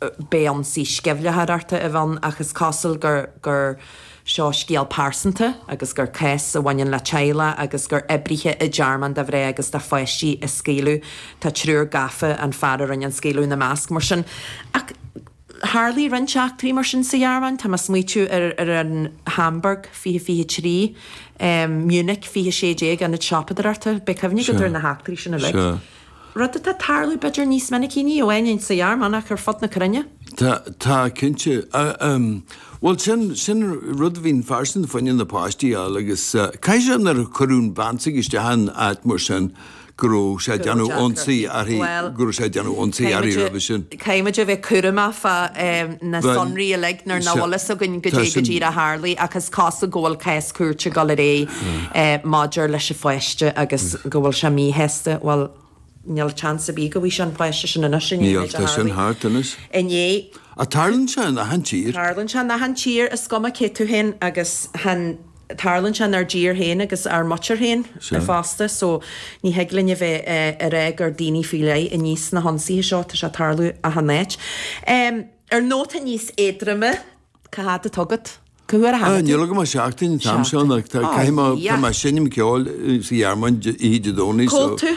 beidh ionsaí sceimhlitheoireachta a bhí ann ach is cosúil gur gur seo scéal pearsanta agus gur cás a bhaineann le teaghlach agus gur oibrithe i dtearmann do mhná agus do pháistí a scaoileadh. Tá triúr gafa, an fear a rinne an scaoileadh ina measc mar sin. Ach tharlaigh roinnt eachtraí mar sin sa Ghearmáin, tá mé ag smaoitiú ar an Hamburg fiche fiche trí, Munich fiche sé déag, Ionad Siopadóireachta, beidh cuimhne agat ar na heachtraí sin uilig. rud atá ag tarlú b'fhéidir níos minicí ní amháin insa Ghearmáin ach ar fud na cruinne. Tá, tá cinnte. Bhuel sin, sin rud a bhíonn fairsing fá choinne na páistí a fháil agus caithfidh sé nuair a cuireadh an bhean s'aige isteach in áit mar sin go raibh sé ag déanamh ionsaí uirthi, go raibh sé ag déanamh ionsaí uirthi roimhe sin. Caithfimid a bheith cúramach fá na sonraí uilig nuair nach bhfuil fhios againn goidé go díreach a tharlaigh ach is cosúil go bhfuil cás cúirte ag dul ar aghaidh maidir leis an pháiste agus go bhfuil sé míshásta, bhuel níl seans ar bith go bhfaighidh sé an páiste sin anois i ndiaidh an méid a tharlaigh inné. Ach tarlaíonn sé in achan tír. Tarlaíonn sé in achan tír, is cuma cé tú féin agus chan. Tarlaíonn sé inár dtír féin agus ár muintir féin fosta, so ní thig linn a bheith ag rá gur daoine faoi leith a níos na hionsaithe seo, tá sé ag tarlú achan áit. Ar nóta níos éadroime, cá fhad atá agat? Cá huair a tháinig tú? Níl agam ach seachtain an t-am seo, ach caithfidh mé, tá mé ag seinm ceoil sa Ghearmáin oíche Dé Domhnaigh, so. Cód tú?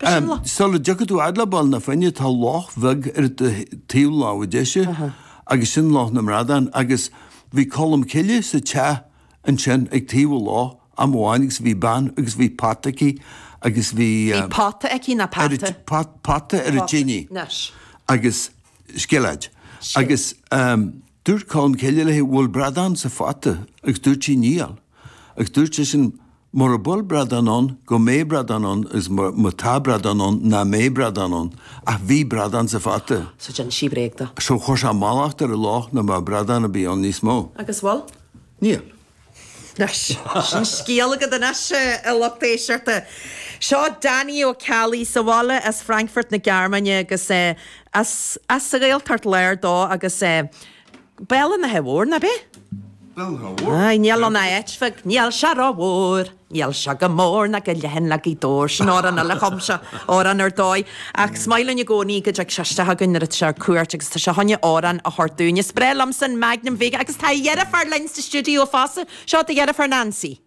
Sula dtiocfaidh tú fhad le Baile na Finne tá loch bheag ar do thaobh lámh deise agus sin Loch na mBradán agus bhí Colm Cille sa teach ansin ag taobh an loch am amháin agus bhí bean agus bhí pota aici agus bhí Bhí pota aici ná pata? Pota ar an tine agus scilléad agus dúirt Colm Cille léi bhfuil bradán sa phota agus dúirt sí níl agus dúirt seisean Mura bhfuil bradán ann, go mbeidh bradán ann agus má tá bradán ann, nach mbeidh bradán ann. Ach bhí bradán sa phota. So d'inis sí bréag dó. So chuir sé mallacht ar an loch nach mbeadh bradán ar bith ann níos mó. Agus bhfuil? Níl. Anois, sin scéal agat anois, a lucht éisteachta. Seo Danny Ó Ceallaigh, sa bhaile as Frankfurt na Gearmáine agus as an Ghaeltacht Láir dó agus. Béal an Átha Móir ná beith. Béal an Átha Móir. Aye, níl ann ach áit bheag, níl sé ró mhór, níl sé chomh mór ná chomh leathan le Gaoth Dobhair. Sin amhrán eile a chum sé, amhrán ar dóigh. Ach is maith linn i gcónaí go dtig sé isteach againn nuair atá sé ar cuairt agus tá sé chun amhrán a thabhairt dúinn. Is breá liomsa an Magnum Vega agus tá a dheirfiúr linn sa stiúideo fosta. Seo do dheirfiúr Nancy.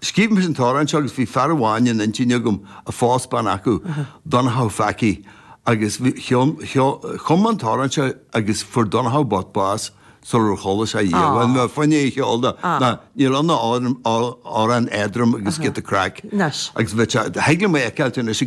Scríobh mise an t-amhrán seo agus bhí fear amháin in intinn agam a phós bean acu, Donnchadha Phacaí, agus bhí, cheol, cheol, chum mé an t-amhrán seo agus fuair Donnchadha bocht bás sular chuala sé í, bhí mé fá choinne é a cheol dó, nó níl ann ach amhrán éadrom agus giota craic, agus bhí sé, thig liom é a fheiceáilt anois i.